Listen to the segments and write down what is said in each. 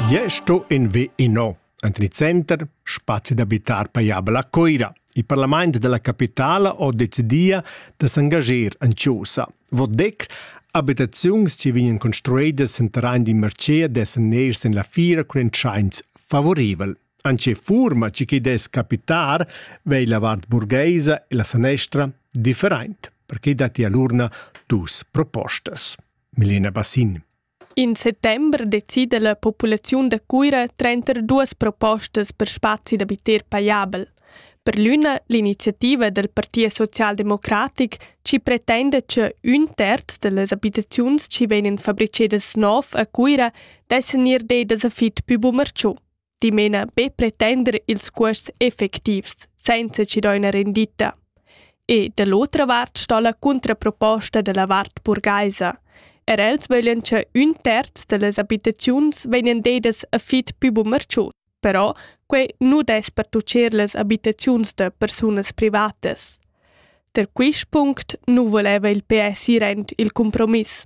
Jeu sto in vi ino. Enten il center, spazi d'abitar pajabel a Coira. Il parlament della capitala ho decidia da s'engager en Chiosa. Vot dec, abitaziuns che vegnan construidas en terrain di mercea dessen ners en la fira cun entscheins favorevel. Anche furma ci che des capitar vei la vart burgheisa e la sanestra different, perché dati all'urna dus propostas. Milena Bassin. In settembre decida la populaziun da Cuira trenter duas propostas per spazi d'abiter pajabel. Per l'üna l'iniziativa del Parti Socialdemocratic ci pretenda che ün terz delle abitaziuns ci vegnan fabricedas nov a Cuira d'esser near dei da sa fit pü bumerciu. dimena be pretender ils cuosts effectivs senza chi do üna renditta. E da l'otra vart sto la contraproposta da la vart burgaisa. Er els voglien che un terz de les abitaziuns vegnan dedas a fit più bumerciut. Però quei nu des pertuccer les abitaziuns de persunas privatas. Der quist punct nu voleva il PS ir aint il compromiss.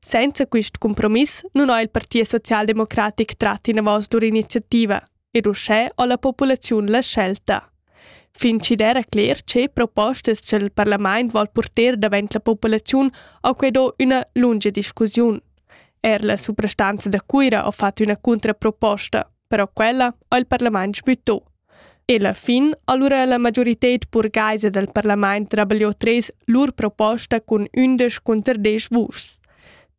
Senza quist cumpromiss nun ho il Partit Socialdemocratic trat inavos lur iniziativa ed uschè ho la populaziun la scelta. Fin chi d'eira cler che propostas cha'l parlamaint vol purter davent la populaziun ho que do üna lunga discussiun. Er la suprastanza da Cuira ho fat üna cuntraproposta. però quella ha il parlament sbüttò. E la fin allura la majorited burgaisa del parlament rabagliò tres lur proposta cun ündesch conter desch vuschs.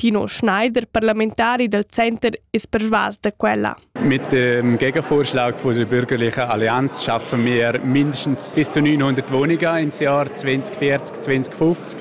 Tino Schneider, parlamentari del Center, ist persuas da quella. Mit dem Gegenvorschlag von der bürgerlichen Allianz schaffen wir mindestens bis zu 900 Wohnungen ins Jahr 2040, 2050.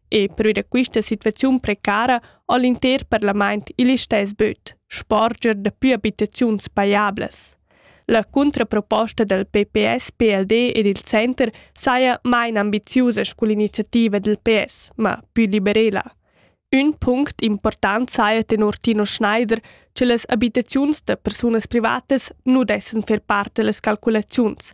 e perüra quista situaziun precara ho l'inter parlamaint il istess böt, sporger da plü abitaziuns pajablas. La cuntraproposta dal PPS, PLD ed il Center saja main ambiziusa scull iniziativa del PS, ma più liberela. Ün punct important saja tenor Tino Schneider, che las abitaziuns da persunas privatas nu dessan fer part da las calculaziuns.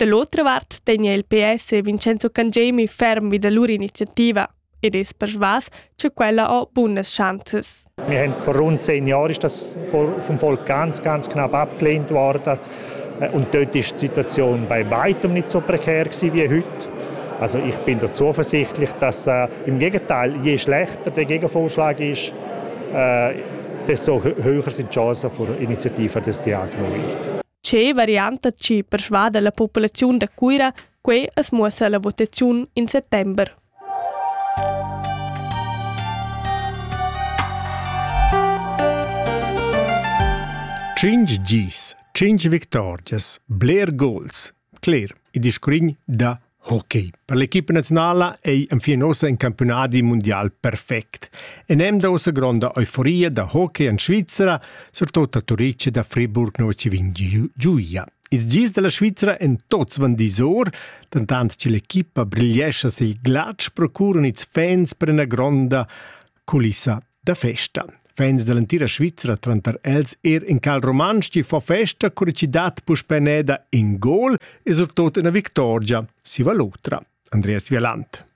Da l'otra vart tegna il PS e Vincenzo Cangemi ferm vi da lur iniziativa ed es persvas che quella ho bunas schanzas. Wir haben vor rund zehn Jahren ist das vom Volk ganz, ganz knapp abgelehnt worden. Und dort ist die Situation bei weitem nicht so prekär wie heute. Also ich bin da zuversichtlich, dass äh, im Gegenteil, je schlechter der Gegenvorschlag ist, äh, desto höher sind die Chancen für Initiativen, dass die angenommen wird. Che varianta chi persvada la populaziun da Cuira, quei as muossa la votaziun in settember. Cinc gis, cinc victorias, bler gols, cler, il discurrin da Hockey. Per l'equipa naziunala ei enfin ossa in campiunadi mundial perfect. E nem da ussa gronda euforia da hockey en Svizzera, surtut a Turice da Friburg no ci vin giuia. Ils gis della Svizzera en tots van disor, dentant che l'equipa brigliescha sil glatsch procuran ils fans per una gronda culissa da festa. Fans dall'entira Svizra tranter els er in Karl Romansch chi fa festa cur chi dat puspè neda in gol e surtot ina victorgia si va l'otra. Andreas Vielant.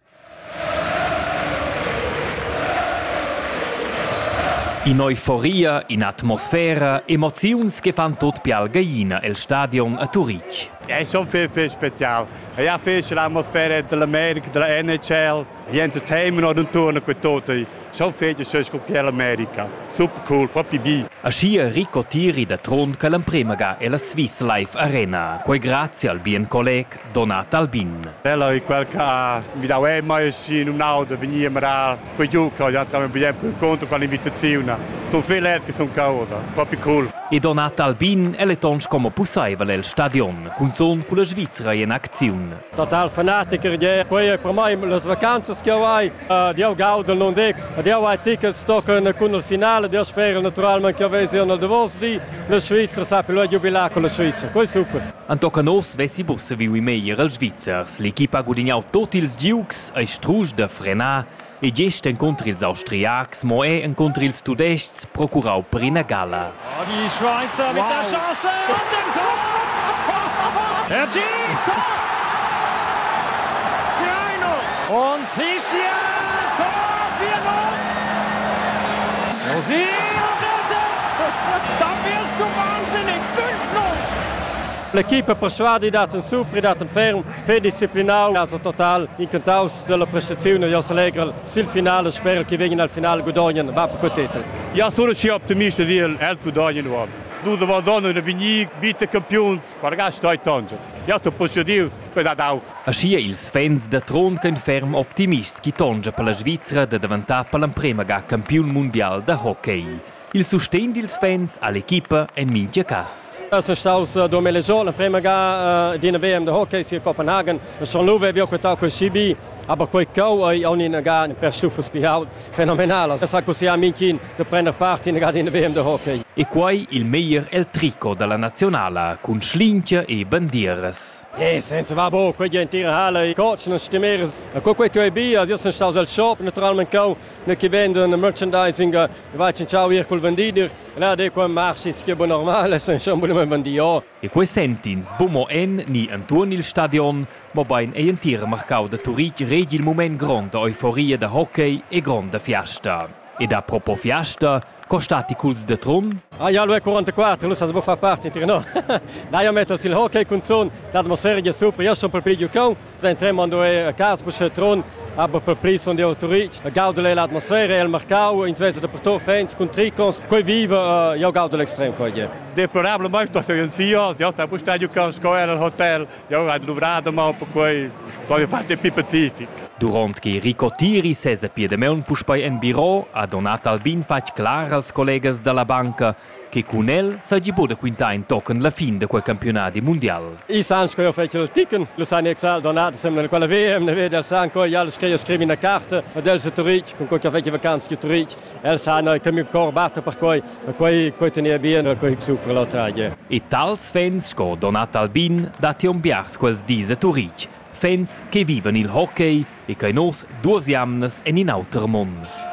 In'euforia, in'atmosfera, emoziuns che fan tot pial gaina el stadion a Turitg. È schon fitg special. E ja fitg l'atmosfera dell'America, della NHL, Niente tema non torna quei tota. So fete so sco che l'America. Super cool, proprio vi. Aschia Rico Tiri da Trun che l'emprema ga ella Swiss Life Arena. Quei grazie al bien colleg Donat Albin. Ella è quel che mi dà eh, mai sì in un'auto venire a quei giù che ja tra bien per conto con l'invitazione. Sono felice che sono causa, proprio cool. E Donat Albin è le tons como pussaival el stadion, cunzon culla Svizzera in acziun. total fanatiker je quei per mei las vacanzas che ho hai ed io gaudo non dic ed io hai tickets tochen cun il finale io spero naturalmente che avessi nel davos di la Svizzera sapi lo giubilar con la Svizzera poi super Antocan Ors vessi busse viu meglier els Svizzers l'equipa ha gudignau tot ils giugs ei strusch da frenar E gest encunter ils Austriacs, mo era encunter ils Tudestgs, procurau per ina gala. Oh, die Schweizer wow. mit der Chance an dem Tor! Hergé, Tor! 3-0! Und Hischia, Tor 4-0! Rosi am Rette! Da wirst du wahnsinnig! 5-0! L'equipe persuadida, su, pridat ferm. Fedisciplinau ha el total incantaus dalla prestaziun e Jos Allegrel sil final e sperel che vegin al final gudognen va per quei titel. Ja sono schi optimist dil el gudognen uob. Dus Vadonna e Vignic vita campiuns per gastar tangel. Ja sto posediu per dad auch. Aschia ils fans da Trond ein ferm optimists chi tongia per la Svizra da daventar per l'emprema ga campiun mundial da hockey. Il sustegn dils fans all'equipa en mintga cass. Es es staus domicilià l'emprema ga d'ina VM de hockey sia Copenhagen. Son Luve havia quitau quel CB, aber quei cheu ei aunc inagà per stuffels pli ault fenomenalas. Es ha cussià Minkin de prender part inagà d'ina VM de hockey. E quei il meglier el tricot dalla nazionala cun schlingia e bandieras. Eh, senza va bo, quei entira halle, i cocen e stimeres. E co quei tu ei bia, io sun staus al shop naturalment cheu ne che vend un merchandising vai cinciau ir col vendider là de qua marchits che bon normal san schon voler vendier e quei sentins bu mo en ni entuorn il stadion mobein ei entir marcau da Turitg regi il mument gronda euforia da hockey e gronda fiasta ed a propo fiasta Co stati culs de Trun? Ah, ja, lu è 44, lu sa sbo fa parte inter no. Na, io metto sil hockey con zon, l'atmosfera è super, io sono per più giocon, da tremmo ando a casa per Trun, aber per più sono di autorit. Gaudo l'atmosfera, il mercau, in svesa de porto fans con tricons, coi vive, io gaudo l'extrem coi. Deplorable, ma sto in sia, io sta bustadio con scola al hotel. Jau hai duvrà damaun perquai ho fatto più pacific. Durant che Rico Tiri sesa pia damaun puspei en biro, ha Donat Albin fatg clar als collegas dalla banca che cun el seigi buca da quintar in tochen la fin da quei campiunadi mundial. I san sco fetg ticken, lu san exal Donat sembla quella VM, ne veda san co jal scriu scrivi una carta ad el se turitg, con co che fetg vacanza che turitg. El sa no che miu cor batta per quei, e quei quei tenia bien, e quei supra la tragia. E tals fans sco Donat Albin dat on biars quels dis a Turitg, fans che vivan il hockey e che nos duas jamnas en in auter mond.